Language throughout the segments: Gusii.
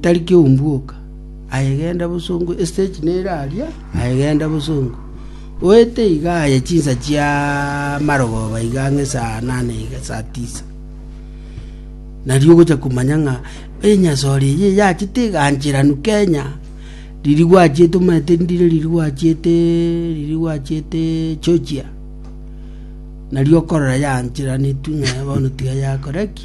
Tari keumbuoka, aye genda bosongo, estage nere aria, aye genda bosongo. Oete iga aye chinsa chia marogoba iga ang'e esaa nane iga esaa tisa. Nario ogocha komanya ng'a enyasore eye yachete egancheranu Kenya, riria gwachiete omanyete ndire riria gwachiete riria gwachiete Georgia. Nario okorora yaancheraneti ng'a bono tiga yakora ki.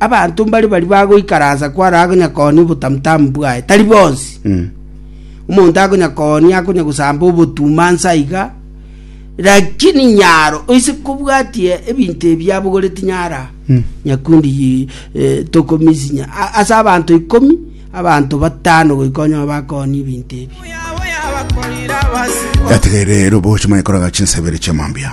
Abanto mbare baria bagoikaransa kware akonya koonia obotamutamu bwaye, tari bonsi. Omonto akonya koonia akonya gosamba obotuma nsa iga, lakini nyaro oise kobwatie ebinto ebi abogoreti nyara nyakundi yi- eh, tokomisinya A- ase abanto ikomi abanto batano goika onye bakoonia ebinto ebi Gategerere rero boche manye koraga chinsabere chia mambia.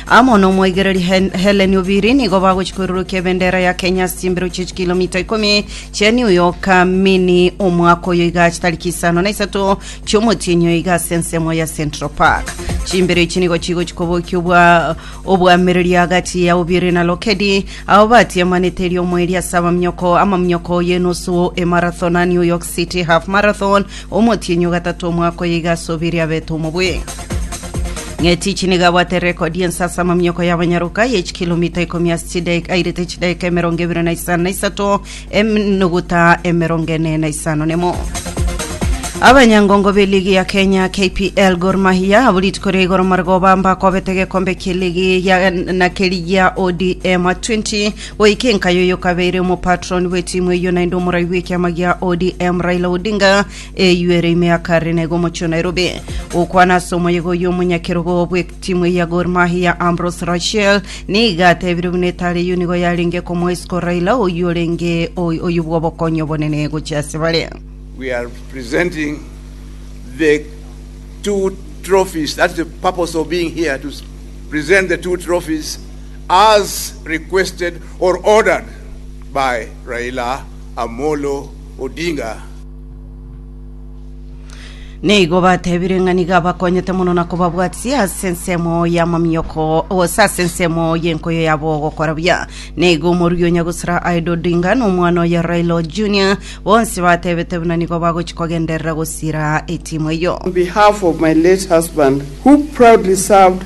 Amo nomoigereri Hellen Obiri nigo bagochia koirorokia ebendera ya Kenya ase chimbero chie chikilomita ikomi chia New York mini omwaka oyo iga ase tariki isano na isato chiomotienyi oyo iga ase ensemo ya Central Park. Chimbero echi nigo chigochia kobokia obwa obwamereri agati ya Obiri na Lokedi abo batiemanete eriomo eria ase abaminyoko amaminyoko y'enusu emarathon a New York City Half Marathon Omotienyi o gatato omwaka oyo iga ase obere abete omobwe. Ng'etich nigo abwate rekodi y'ense ase amamioko y'abanyaroka ya chikilomita ikomi ase chidaika airete chidaika emerongo ebere na isano na isato enuguta emerongo ene na isano nemo. Abanyangongo be ligi ya Kenya KPL Gor Mahia abo rituko ria igoro marigoba mbakobete gekombe kia ligi ya na keri gia ODM 20 Goika enkayo eyokabeire, omopatron bwetimu eyio naende omorai bwekiama gia ODM Raila Odinga eyio ere ime ya Karenega omochie o Nairobi. Gokwana ase omoyega oyio omonyakerogo bwetimu eyio ya Gor Mahia Ambrose Rachel nigo atebire buna etara eyio nigo yarenge komoa isiko Raila oyio orenge oyio bwobokonyi obonene gochia ase bare. We are presenting the two trophies. That's the purpose of being here, to present the two trophies As requested or ordered by Raila Amolo Odinga. Nigo batebire ng'a nigo abakonyete mono na kobabwatisia ase ensemo y'amamioko gose ase ensemo y'enkoyo yabo gokora buya. Nigo omorui o Nyagusura Aida Odinga na omwana oye Raila Junior bonsi batebete buna nigo bagochi kogenderera gosira etimu eyio. On behalf of my late husband, who proudly served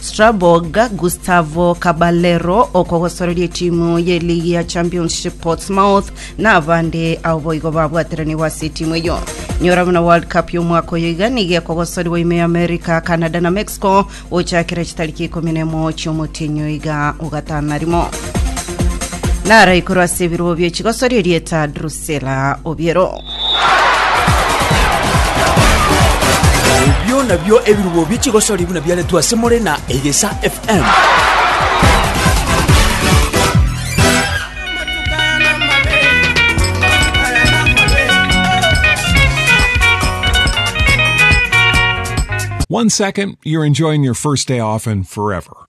Strasbourg, Gustavo Caballero okogosoreria etimu y'eligi ya Championship Portsmouth nabande ao boigo babwateranigwe ase etimu eyo. Nyora buna World Cup y'omwaka oyo iga nigo ekogosoriwa ime y'America, Canada na Mexico gochakera chitariki ikomi na emo chi'omotenyo iga ogatano na rimo. Naraikuru ase ebirobo bie chigosori erieta Drus Selah, Obiero. Ebio nabio ebirubo bie chigosori buna biaretwe ase more na Egesa FM. One second, you're enjoying your first day off and forever.